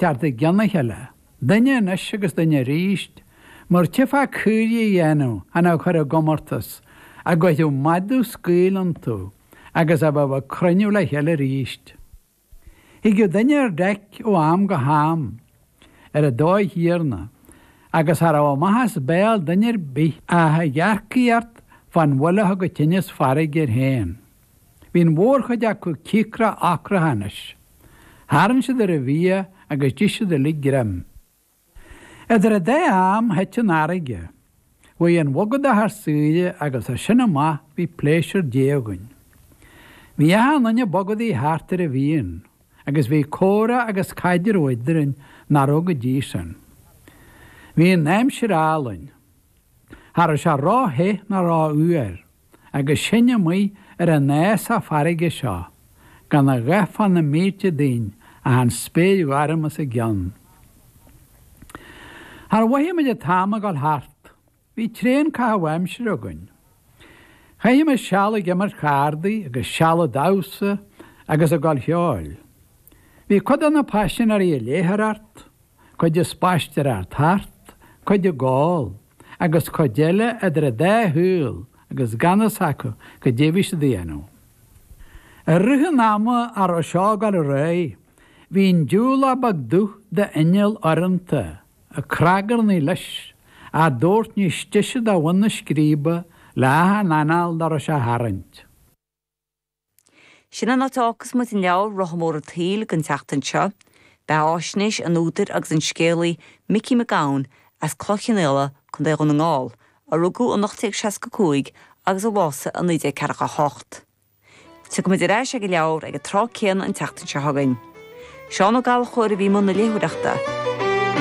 Thart i gcionn a chéile, duine anois agus duine arís, mar tífeá caoirigh a dhéanamh chan á chur i gcomórtas, a gcuirfeadh madadh scaoll iontu agus a bheadh ag cruinniú le chéile arís. Thigeadh duine ar deic ó am go ham, ar an dóigh chéanna, agus cha raibh amach as béal duine ar bith ach ag éagaoint fán bhuille a thug an tinneas farraige air féin. Bhí an mhórchuid acu cíocrach ocrach anois. Tharraing siad ar an bhia agus d'ith siad uilig greim. Idir an dá am, thit an fharraige. Bhí an bhogadach ar shiúl agus as sin amach bhí pléisiúr Dé againn. Bhí achan duine ag bogadaigh thart ar a mhian agus bhí comhrá agus caidreamh eadrainn nach raibh go dtí sin. Bhí an aimsir álainn. Cha raibh sé ró-the ná ró-fhuar. agus sinn amuigh ar an fhásach farraige seo, gan a dhath fá na mílte dínn ach an spéir ghorm os ár gcionn. Char mhoithigh muid an t-am ag dul thart, bhí tréan caitheamh aimsire againn. Chaithimis seal ag imirt chardaí agus seal ag damhsa agus ag gabháil cheoil. Bhí cuid de na paisinéirí ag léitheoireacht, cuid ag spaisteoireacht thart, cuid ag ól, agus cuid eile idir an dá shaol agus gan fhios acu goidé a bhí siad a dhéanamh. I rith an ama a raibh seo ag dul ar aghaidh, bhí an diúlach beag dubh d'inneall urrúnta ag cnagarnaí leis, ár dtabhairt níos deise do bhun na scríbe le achan anáil dá raibh sé a tharraingt. Sin an áit a fhágfas muid an leabhar Rotha Mór an tSaoil don tseachtain seo. Beathaisnéis an údair agus an scéalaí Micí Mac Gabhann as Cloich Chionnaola, Co. Dhún na nGall, a rugadh in 1865 agus a bhásaigh in 1948. Tiocfaimid ar ais ag an leabhar ag an tráth céanna an tseachtain seo chugainn. Seán Ó Gallchóir a bhí i mbun na léitheoireachta.